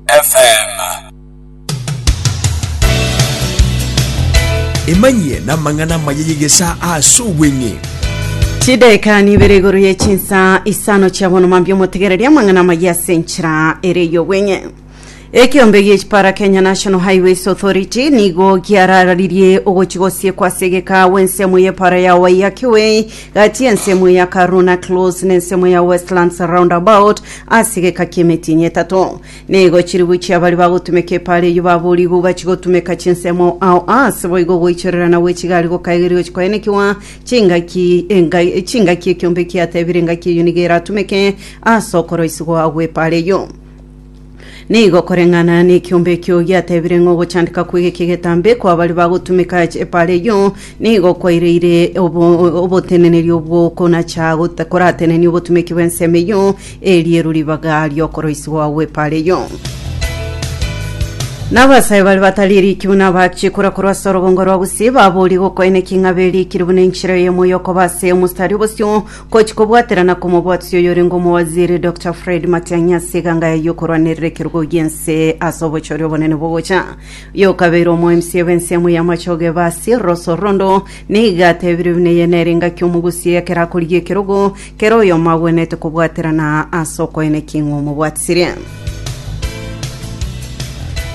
FM. emanyie namang'ana amaya y'egesa ase obweng'e chidaeka nibere igoro ye chinsa isano chia bono mambia omotegereria amang'ana amaya ase enchera ere eyobweng'e ekiombe gie chipara kenya national highways authority nigo giarararirie ogochi gosiekwa ase egeka w'ensemo y'epara ya waiyaki way gati y'ensemo ya Karuna Close n'ensemo ya Westlands Roundabout ase egeka ki'emetinyi etato. Nigo chilifu chia baria bagotumeka epaara eyio baboorigwe gachia gotumeka chinsemo ao aase boigo goichorerana gwe chigari gokaegeria gochia koenekiwa chingaki enga- chingaki ekiombe kiatebire engaki eyio nigo eratumeke ase okoroisigwa gw'epaara eyio. Nigo koreng'ana nekiombe ekio giatebire ng'a ogochandeka kwe geke getambe kwa baria bagotumeka epaara eyio nigo kwaireire obo- oboteneneri obwo konacha got- koratenenie obotumeki bw'ensemo eyio erieru ribaga ri'okoroisigwa gw'epaara eyio. Nabasae baria batari eriki buna abachie kora korwa ase orobongo rwa gusii, baborie gokoeneki ng'a berikire buna enchera eyemo y'okoba ase omostari obosio Gochia kobwaterana kw'omobwatisi oyorenge omowaziri Doctor Fred Matiang'i ase eganga yaye y'okorwanerera ekerogo gi'ense ase obochori obonene bogocha. Oyo okabeire omoemisi ebe ensemo y'amachoge ebe ase Ross Orondo nigo atebirie buna eye nere engaki omogusia ekero akorigia ekerogo kera oyomo agwenerete kobwaterana ase okoyena eking'u omobwatisirie.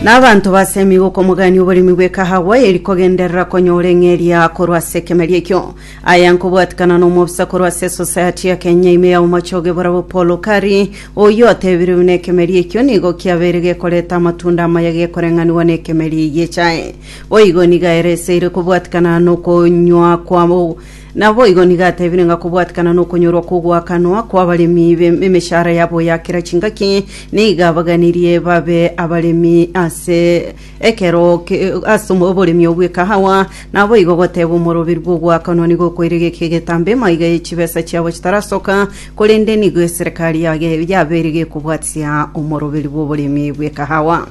Na abanto basemi gokomogania oboremi bw'ekahawa eri kogenderera konyora eng'eria korwa ase ekemeria ekio. Aya nkobwatikana nomobisa korwa ase Society ya Kenya ime ya omochoge borabwo Paul Okari, oyio atebirie buna ekemeria ekio nigo kiabeire gekoreta amatunda amaya gekoreng'aniwa nekemeria eye echae. Boigo niga ereseire kobwatikana nokonywa kwabo naboigo niga atebire ng'a kobwatikana nokonyorwa kwogoakanwa kwabaremi emeshara yabo ya kera chingaki niga abaganirie babe abaremi ase Ekero ase oboremi obw'ekahawa, naboigo goteeba omoroberu bw'ogoakanwa nigo okoirega eke egetambe emaiga ye chibesa chiabo chitarasoka, korende nigo eserekari yage yabeire gekobwatia omoroberu bw'oboremi bw'ekahawa.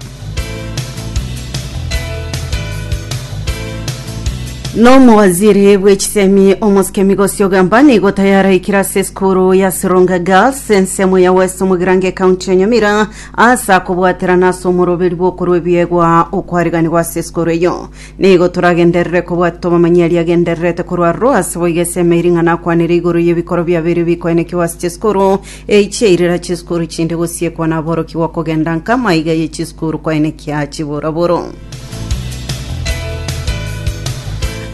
Nomowaziri bwe chisemi omosike Migosi Ogamba nigo tayaraikire ase esukuru ya Sironga Girls ensemo ya West Mugirango ecounty ya Nyamira Asa kobwaterana ase omoroberi bw'okorwa ebiegwa okwariganigwa ase esikoro eyio, nigo toragenderere kobwati tw'amamanyia aria agendererete korwa aroro ase boigo ase emeeri ng'a nakwanire igoro y'ebikoro biabeire ebikoenekigwa ase chisikuru eyi chia irira chisikuru chinde gosiekwa na aborokigwa kogenda nka amaiga ye chisikuru koenekia chiboroboro.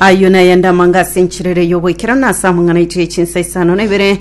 Ayio nayende amanga ase enchiriri y'oboikeranu ase amang'ana aito ye chinsa isano na ibere,